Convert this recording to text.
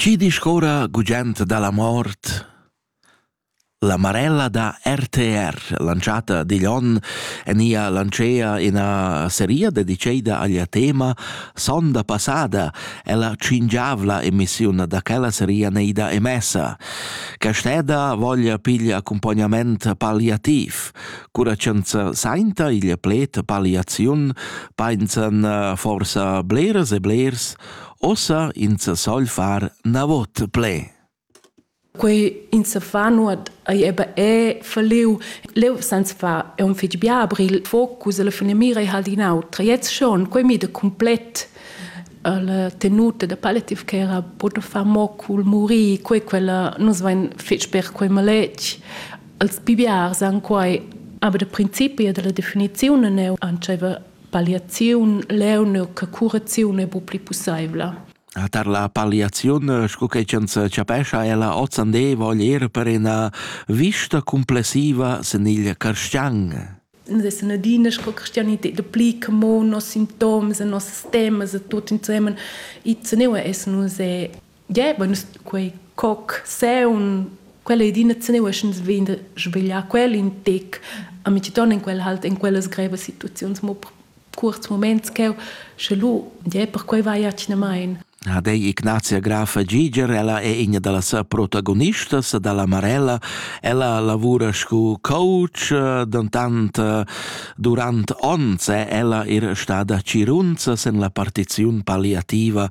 Chi discorra gugent da la mort? La Marella da RTR, lanciata digl onn, en ia lancea ina seria dediceida aglia tema Sonda passada e la cingiavla emissiun da quella seria neida emessa. Casteda voglia piglia accompagnament palliativ, Cura ch'ün sainta igl pled palliaziun, painsan uh, forsa bleras e blers, ossa ins sogl far navot ple. Quei ins fa nuot ei eba è verliu. Leu sans fa è un fitg biabri il focus e la fine mira è halt in autra. Jetzt schon, quei mi de complet la tenuta da palliative care può far mo cul muri, quei quella nus vain fitg per quei maletg. Als biars han quai aber da principi dalla definiziun neu antscheva palliaziun leu neu che curaziun è bu pli pussaivla. Tar la palliaziun, sco che ins capescha, è la Ozande vogl ir per ina vista complessiva sen il carstian. Es eine dynasche Christianität, der Blick, mo nos Symptome, nos Systeme, tutto insieme, i zu neue essen uns Yeah, bueno, quei cocseun, quella è d'ina zeniuschens vegn da svegliar quel in tec, a mi ton in quel halt in quellas grevas situaziuns mo per kurz moments cheu, sche lu, yeah, per quei vai atgnamain. Ha dei Ignazia Grafa Giger, ella è ina dalla sa protagonistas dalla Marella, ella lavura scu coach, dentant eh, durant ons è ella er stada cirunza sen la partiziun palliativa